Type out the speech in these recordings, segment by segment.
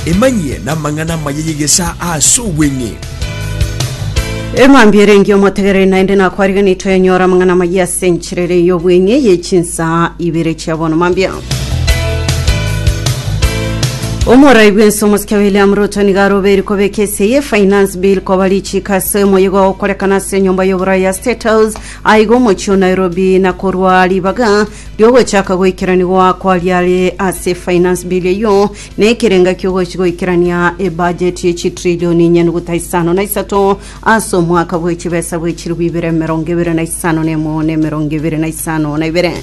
Emanyie namang'ana amaya y'egesaa as'obweng'e. Emambia ere engiya omotegereri naende nakwariganie toyanyore amang'ana amaya ase enchera ere y'obweng'e y'echinsaa ibere chia bono mambia. Omorai bw'ense omosike William Ruto nigo arobeiri kobeka ese ye finance bill koba richiiko ase omoyigo ogokorekana ase enyomba y'oboroi ya State House Aiga omochie o Nairobi na korwa ribaga riogochaka goikeranigwa kwa riare ase Finance Bill eyio na ekerenga kiogochi goikerania ebudget ye chitrillioni nyanuguta isano na isato ase omwaka bwe chibesa bwe chilifu ibere emerongo ebere na isano na emo na emerongo ebere na isano na ibere.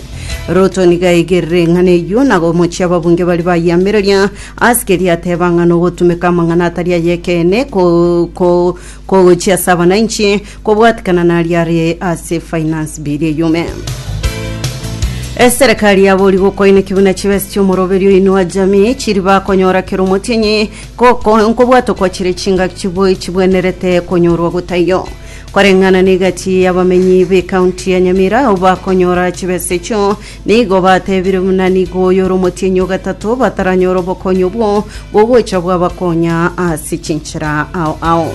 Ruto nigo aigerire eng'ana eyio na gomochia ababunge baria bayeamereria ase keria ateba ng'a nogotumeka amang'ana atari ay'ekeene ko- ko- kogochia ase abananchi Kobwatikana naria are ase finance bill eyume. Eserekari yabori gokoineki buna chibesa chiomoroberi oinua jamii chiri bakonyora kero omotienyi goko nkobwata okwa chire chingaki chiboi chibwenerete konyorwa gotaiyo. Koreng'ana negati yabamenyi b'ekaunti ya Nyamira abakonyora chibesa echio Nigo batebire buna nigo oyo ore omotienyi o gatato bataranyora obokonyi obwo bogocha bwabakonya ase chinchera ao ao.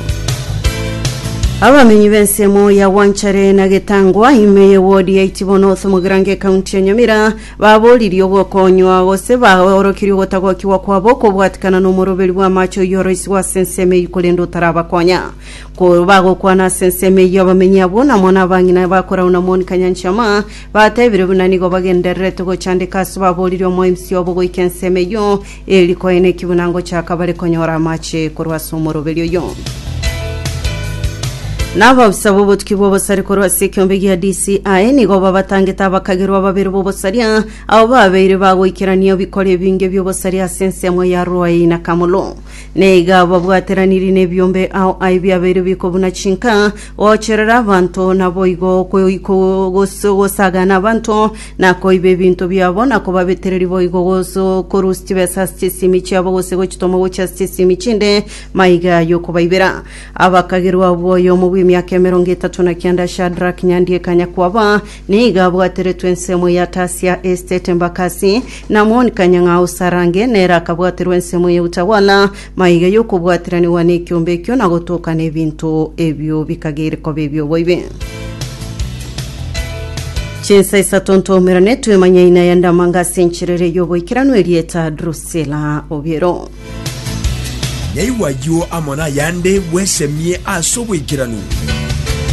Abamenyi b'ensemo ya Gwanchare na Getangwa, ime ye wodi ya Itibono ase Mogrange ekaunti ya Nyamira, baboririe ogokonywa gose baorokirie ogotagokigwa kwabo kobwatikana nomoroberi bw'amache oyio oroisigwe ase ensemo eyio korende otarabakonya. Ko bagokwana ase ensemo eyio abamenyi abwo namo nabang'ina ba Korauna Monica Nyanchama Batebire buna nigo bagendererete gochandeka ase baboorire omoemsi obo goika ensemo eyio, eeri koe neki buna ngochaka bare konyora amache korwa ase omoroberi oyio. Na abaofisa b'obotuki bw'obosare korwa ase ekeombe gia DCI nigo babatangete abakagerwa babere b'obosaria, abo babeire bagoikerania ebikora ebinge bi'obosaria ase ensemo ya Ruai na Kamulu. Na iga babwateranirie nebiombe ao aye biabeire biko buna chinka, Gocherera abanto naboigo gosaga nabanto, na koiba ebinto biabo, na kobabetereria boigo korusia chibesa ase chisimi chiabo gose gochitoma gochia ase chisimi chinde maiga yokobaibera. Abakagerwa abwo oyomo bw'emiaka emerongo etato na kianda Shadrack Nyandieka nyakwaba, Nigo abwateretwe ensemo ya Tasia Estate Embakasi, na Amoni Kanyang'au Sarange, nere akabwaterwa ensemo ya Utawala, maiga y'okobwatiranigwa nekiombe ekio na gotokana ebinto ebio bikagere koba ebi'oboibi. Chinsa isato ntoumerane twemanye ina ya ndamanga ase enchera eria y'oboikeranu erieta Drusilla Obiero. Naigwa ayio amo nayande bwesemie ase oboikeranu.